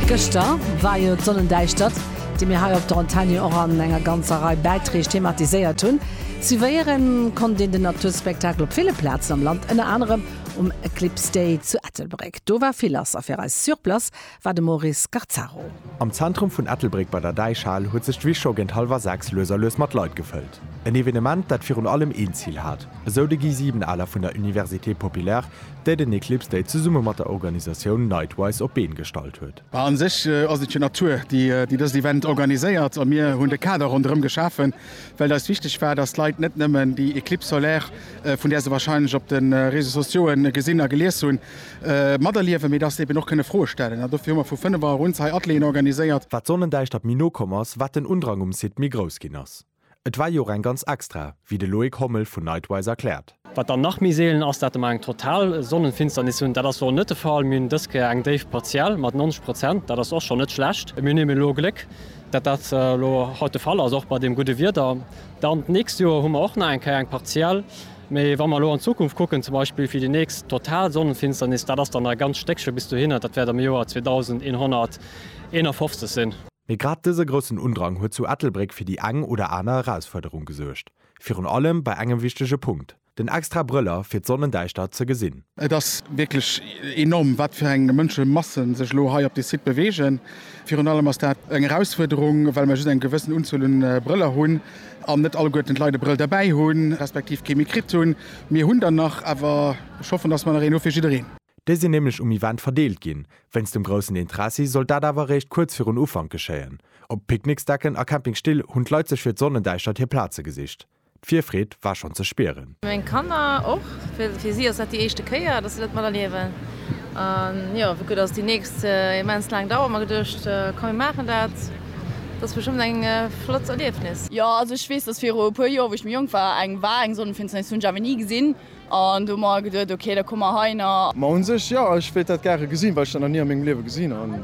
Gëschter war jo d'Sonnendäischtert, déi mir hei op der Antenne jo och an enger ganzer Rei Bäitreeg thematiséiert hunn. Suivéieren konnt een den Naturspektakel op ville Plazen am Land, ënner anerem um Eclipse Day zu Ettelbréck. Do war vill lass a fir eis sur place war de Maurice Scarzaro. Am Zentrum vun Ettelbréck bei der Däichhal huet sech d'Wiss scho géint hallwer 6 lues a lues mat Leit gefëllt. En Evenement, dat virun allem een Zil hat, esou de Guy Siebenaler vun der Université Populaire, déi den Eclipse Day zesumme mat der Organisatioun Nightwise op d'Been gestallt huet. Mä a sech ass et jo d'Natur, déi dëst Event organiséiert a mir hunn de Kader ronderëm geschafen, well et eis wichteg war, dass d'Leit net nëmmen déi Eclipse solaire, vun där se warscheinlech op de Réseaux-sociaux'e gesinn a gelies hunn, materliewen, mee dass se eben och kënne Froe stellen. An dofir hu mer vu 5 Auer un hei Atelieren organiséiert. Wat d'Sonnendäischtert méi no komm ass, wat den Undrang um Site méi grouss ginn ass. Et war jo och eng ganz extra, wéi de Loïc Hommel vun Nightwise erkläert. Wat dann nach méi seelen ass, dat mer eng total Sonnenfinsternis hunn. Dat ass elo net de Fall. Mir hunn dës Kéier eng déif partiell mat 90 Prozent. Dat ass och schonn net schlecht. Mir hunn eben elo Gléck, dat dat elo haut de Fall ass, och bei deem gudde Wieder. Dann d'nächst Joer hu mer och nach eng Kéier eng partiell. Mee wa mer elo an d'Zukunft kucken, zum Beispill fir déi nächst total Sonnenfinsternis, dat ass dann nach e ganz Stéckche bis dohinner. Dat wäert am Joer 2151 sinn. Mee grad dëse groussen Undrang huet zu Ettelbréck fir déi eng oder aner Erausfuerderung gesuergt. Virun allem bei engem wichtege Punkt, den extra Brëller fir d'Sonnendäischtert ze gesinn. Et ass wierklech enorm, wat fir eng Mënschemassen sech elo hei op dee Site beweegen. Virun allem ass dat eng Erausfuerderung, well mer just eng gewëssen Unzuel un Brëller hunn an net alleguerten d'Leit e Brëll derbäi hunn, respektiv kee méi kritt hunn. Mir hunn der nach, awer ech hoffen, dass mer nach een hu fir jiddereen. Déi sinn nämlech um Event verdeelt ginn. Wéinst dem groussen Interessi sollt dat awer eréischt kuerz virun Ufank geschéien. Op Picknicksdecken a Campingstill hunn d'Leit sech fir d'Sonnendäischtert hir Plaze gesicht. D'Virfreed war schonn ze spieren. Meng Kanner och. Fir si ass dat déi éischte Kéier, datt se dat mat erliewen. An jo, wéi gutt ass déi nächst immens laang Dauer? Hu mer geduecht, komm mir maachen dat. Dat ass bestëmmt eng flott Erliefnis. Jo, also ech weess, datt viru e puer Joer, wou ech méi jonk war, eng war, eng Sonnenfinsternis hunn ech awer ni gesinn. An do hu mer geduet, ok, da komme mer heiner. Ma un sech, jo, ech wéilt dat gare gesinn, well ech dat nach ni a mengem Liewe gesinn hunn.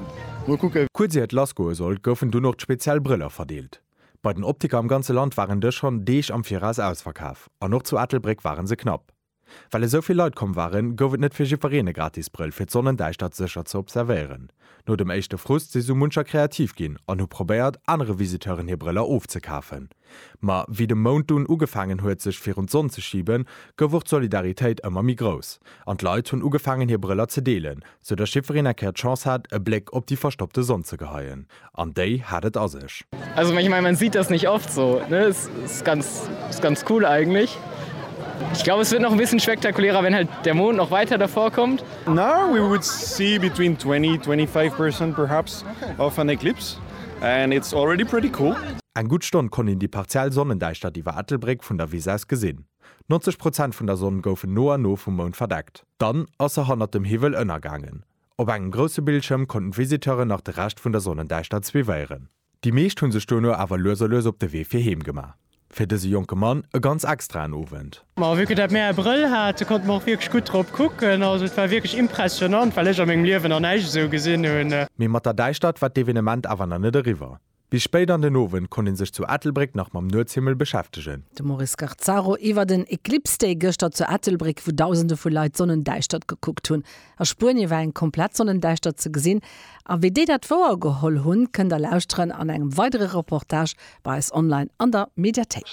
Mol kucken. Kuerz ier et lassgoe sollt, goufen dunn och d'speziell Brëller verdeelt. Bei den Optiker am ganze Land waren dës schonn Deeg am Viraus ausverkaf an och zu Ettelbréck ware se knapp. Well esou vill Leit komm waren, gouf et net fir jiddwereen e gratis Brëll, fir d'Sonnendäischtert sécher ze observéieren. No dem éischte Frust si sou muncher kreativ ginn an hu probéiert, anere Visiteuren hir Brëller ofzekafen. Ma wéi de Mount dunn ugefaangen huet, sech virun d'Sonn ze schiben, gouf och d'Solidaritéit ëmmer méi grouss an d'Leit hunn ugefaangen, hir Brëller ze deelen, soudatt jiffreen eng Kéier d'Chance hat, e Bléck op déi verstoppte Sonn ze geheien. An déi hat et a sech. Also ich meine, man sieht das nicht oft so, ne? Es ist ganz, ist ganz cool eigentlich. Ich glaube, es wird noch ein bisschen spektakulärer, wenn halt der Mond noch weiter davor kommt. Now we would see between 20, 25 percent perhaps of an eclipse and it's already pretty cool. Eng gutt Stonn konnt een déi partiell Sonnendäischtert iwwer Ettelbréck vun der Wiss aus gesinn. 90 Prozent vun der Sonn goufen no an no vum Mound verdeckt, dann ass se hannert dem Hiwwel ënnergaangen. Op engem grousse Bildschëm konnten d'Visiteuren nach de Rescht vun der Sonnendäischtert suivéieren. Déi meescht hunn sech duerno awer lues a lues op de Wee fir heem gemaach. Fir dëse jonke Mann e ganz extraen Owend. Ma vu que dat mär e Brëll hate konnte mer och wierklech gutt drop kucken. Also et war wierklech impressionnant, well ech a mengem Liewen nach näischt esou gesinn hunn. Mee mat der Däischtert war d'Evenement awer nach net eriwwer. Bis spéit an den Owend konnt ee sech zu Ettelbréck nach mam Nuetshimmel beschäftegen. De Maurice Garzaro iwwer den Eclipse Day gëschter zu Ettelbréck, wou Dausende vu Leit d'Sonnendäischtert gekuckt hunn. A Spuenie war eng komplett Sonnendäischtert ze gesinn. A wéi déi dat wouer geholl hunn, kënnt der lauschteren an engem weidere Reportage bei eis online an der Mediathéik.